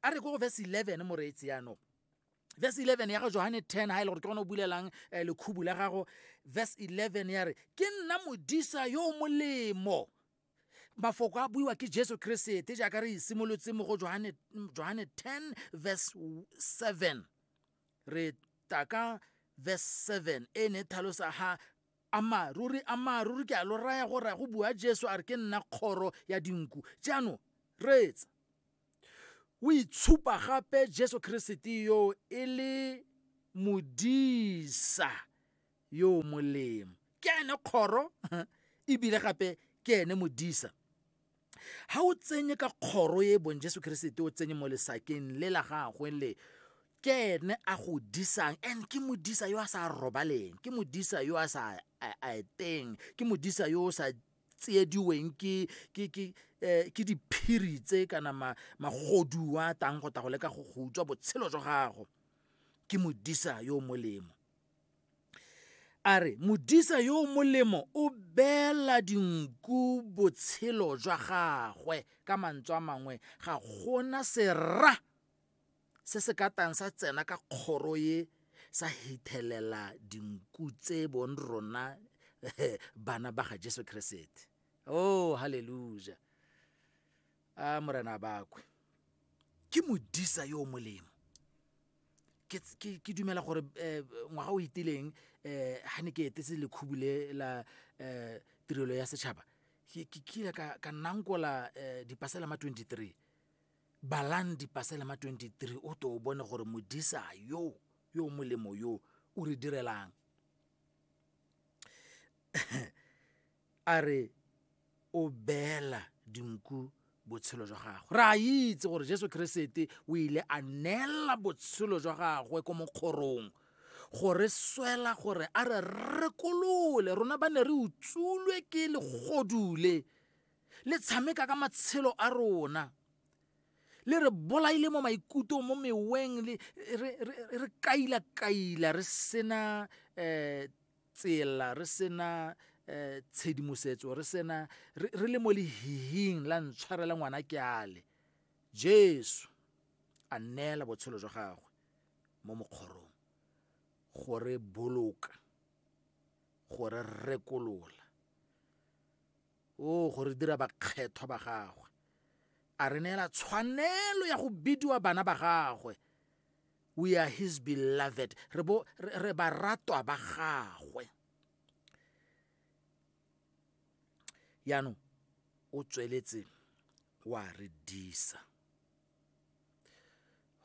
a re ko go verse 11 moreetsi yaanong verse 11 ya ga johane 10 ga e le gore ke gone o bulelang eh, lekhubu la gago verse 11 ya re ke nna modisa yo o molemo mafoko a buiwa ke jesu keresete jaaka re isimolotse mo go johane 10 verse 7 re taka verse 7 e ne thalosa ha Ammaaruri, ammaaruri ke a lo raya gore a go bua Jesu a re ke nna kgoro ya dinku. Jaanong, reetsa. O itshupa gape Jesu Keresete yo e le modisa yo o molemo. Ke ene kgoro ebile gape ke ene modisa. ga o tsenye ka kgoro e bong jesu keresete o tsenye mo lesakeng le la gagwe le ke ene a go disang and ke modisa yo a sa robaleng ke modisa yo a sa eteng ke modisa yo o sa tsiediweng ke ke ke eh, ke diphiri tse kana magodu a tang go ta go leka go go utswa botshelo jwa gago ke modisa yo molemo a re modisa yo o molemo o beela dinku botshelo jwa gagwe ka mantswe a mangwe ga gona sera se se ka tang sa tsena ka kgoro ye sa hethelela dinku tse bong rona bana ba ga jesu keresete oh halleluja a morena bakwe ke modisa yo o molemo ke dumela gore eh, ngwaga o itileng um eh, ga ne ke etetse lekhubu le la um tirelo ya setšhaba ke kile ka nankola um dipasela ma 23 balang dipasela ma 23 o to o bone gore modisa yo yo molemo yo o re direlang A re o beela dinku botshelo jwa gagwe. Re a itse gore Jesu Keresete o ile a neela botshelo jwa gagwe ko mokgorong go re swela gore a re rekolole rona ba ne re utsulwe ke legodule le tshameka ka matshelo a rona le re bolaile mo maikutong mo meweng re kaila-kaila re sena um eh, tsela re sena um tshedimosetso re sena re le mo lehihing la ntshwarela ngwana ke ale jesu a neela botshelo jwa gagwe mo mokgorong gore boloka gore rekolola O go re dira bakgethwa ba gagwe. A re neela tshwanelo ya go bidiwa bana ba gagwe. We are his beloved. Re bo re baratwa ba gagwe. Yaanong o tsweletse wa re disa.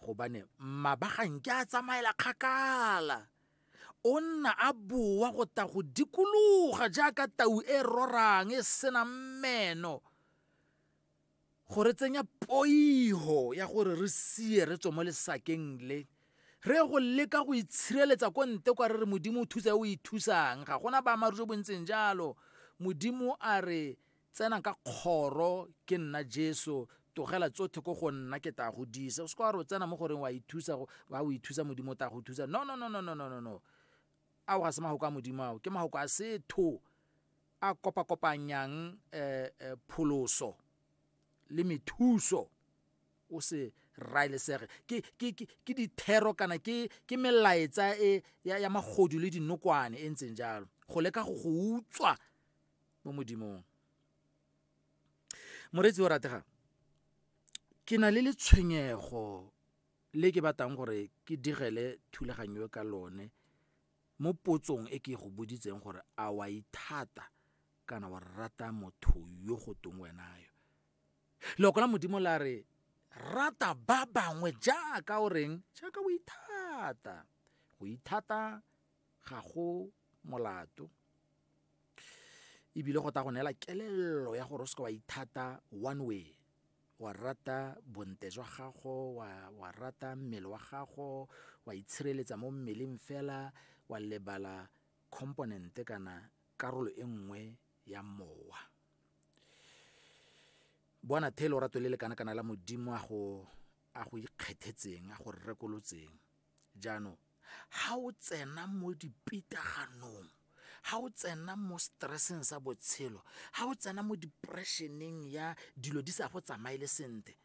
gobane mabagang ke a tsamaela kgakala o nna a boa go ta go dikologa jaaka tau e rorang e senang meno go re tsenya poiho ya gore re sie re tswe mo lesakeng le re go leka go itshireletsa ko nte kwa re re modimo o thusa o ithusang ga gona baamaru jo bontseng jalo modimo a re Tsena ka kgoro ke nna Jesu, togela tsotlhe ko go nna ke tla go disa. O se kwa re o tsena mo goreng wa ithusa, wa o ithusa Modimo o tla go thusa. No, no, no, no, no, no, no, no. Ao ga se magoko a Modimo ao, ke magoko a setho a kopakopanyang eh, eh, pholoso le methuso o se raelesege ke, ke, ke, ke dithero kana ke, ke melaetsa e ya, ya magodu le dinokwane e ntseng jalo go leka go go utswa mo modimong moreetsi o rategang ke na le letshwenyego le ke batlang gore ke digele thulaganyo ka lone mo potsong e ke go boditseng gore a wa ithata kana wa rata motho yo go tong wena yo loko la modimo la re rata ba bangwe jaaka o reng jaaka o ithata go ithata ga go molato ebile go ta go neela kelello ya gore o seke wa ithata one way wa rata bonte jwa gago wa, wa rata mmele wa gago wa itshireletsa mo mmeleng fela wa lebala component kana karolo e nngwe ya mowa bona thelo rato le le kana kana la modimo a go a go ikgethetseng a go rekolotseng jaanong ga o tsena mo dipitaganong ga o tsena mo stresseng sa botshelo ga o tsena mo depressioneng ya dilo di sa go tsamaele sentle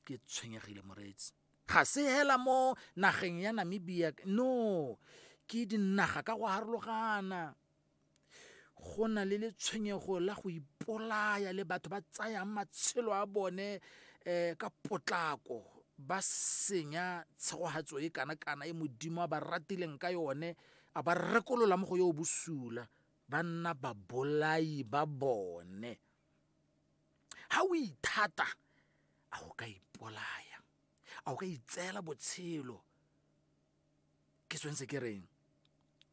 ke tshwenyegile moreetsi ga se hela mo nageng ya namibia no ke dinaga ka go harologana go na le letshwenyego la go ipolaya le batho ba tsayang matshelo a bone um ka potlako ba senya tshegogatso e kana-kana e modimo a ba ratileng ka yone a ba rekolola mo go yo bosula ba nna babolai ba bone ga o ithata a o ka ipolaya a o ka itseela botshelo ke tshwanetse ke reng